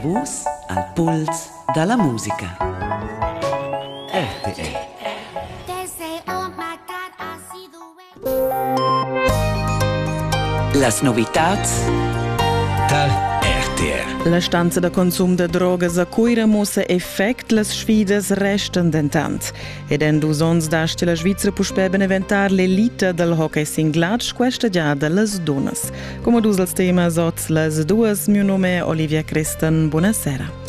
Vus al puls da la musica. RTL Las novitads dal RTR. La stanza da consum da drogas a Cuira mussa effect, las sfidas restan dentant. Ed en dus onns dasti la Svizra puspè beneventar l'elita dal hockey singlatsch questa giada las dunnas. Como dus els temas oz las duas, mio nome è Olivia Christen, buonasera.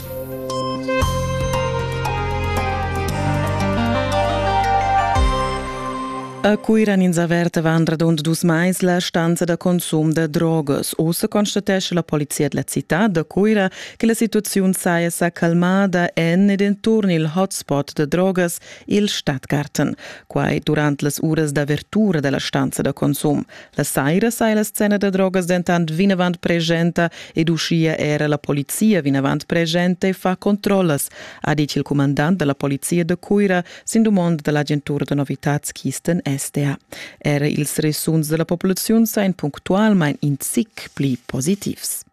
A Cuira ins averta van radund dus mais la stanza da consum da drogas. Ussa constatesce la polizia della città da Cuira che la situazione saja sa calmada en ed intorno il hotspot da drogas, il Stadtgarten. Quai durante las uras d'avertura della stanza da consum. La saira sai la scena da drogas dentant vinavant presenta ed uschia era la polizia vinavant presenta e fa controllas, ha ditg il cumandant da la polizia da Cuira sin dumond da l'agentura da novitads Kisten SDA. Era ils resuns da la populaziun sain punctualmain in zic pli positivs.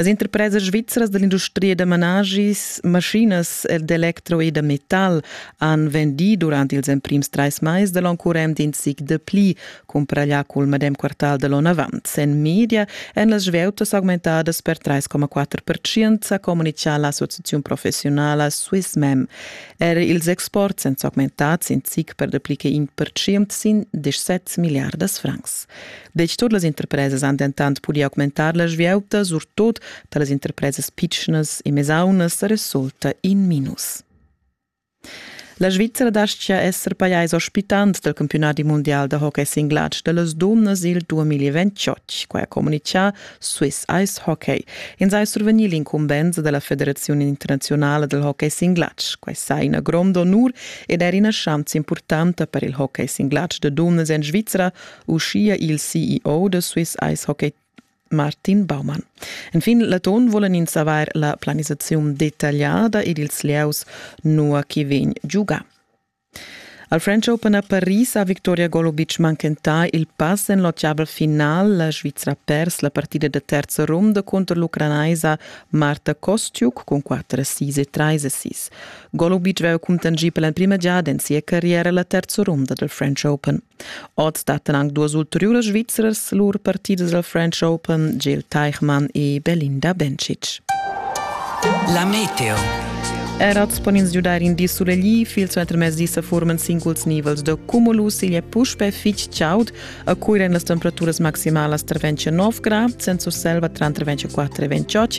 Las interpresas svizras dall'industria da manaschis, maschinas ed electro e da metal han vendì durant ils emprims trais mais da l'onn current in zic dapli cumpraglià cul medem quartal da l'onn avant. En media èn las svieutas augmentadas per 3,4%, ha communitgà l'associaziun professiunala Swissmem. Er ils exports èn s'augmentats in zic per dapli che in percent sin 17 milliardas francs. Deci tot las interpresas han dentant pudì augmentar la svieuta, surtut da las interpresas pitschnas e mesaunas resulta in minus. La Svizzera dastgia esser pajais ospitant dal campiunadi mundial da hockey singlatsch da las dunnas il 2028, quai ha communitgà Swiss Ice Hockey. Ins ha survegnì l'incumbensa da la Federaziun internaziunala dal hockey singlatsch. Quai sa ina gronda onur ed era ina schanza impurtanta per il hockey singlatsch da dunnas en Svizzera, uschia il CEO da Swiss Ice Hockey Martin Baumann. Enfin l'atun vulan ins avair la planisaziun detagliada ed ils lieus nua che vegn giugà. Al French Open a Paris ha Victoria Golobic manchentà il pass en l'otgavel final. La Svizra ha pers la partida da terza runda cunter l'ucranaisa Marta Kostiuk cun 4-6 e 3-6. Golubic aveva cuntanschì per l'emprima giada en sia carriera la terza runda del French Open. Oz stattan anche due ulteriuras Svizzers lur partidas del French Open, Gil Teichmann e Belinda Bencic. La Meteo Erats pon ins giudar in di sulegli fil suentermezdi sa forman singuls nivels de cumulus igl è puspe fitg chaud a cui ren las temperaturas maximalas tra 29 grad, senza selva tra 24 e 28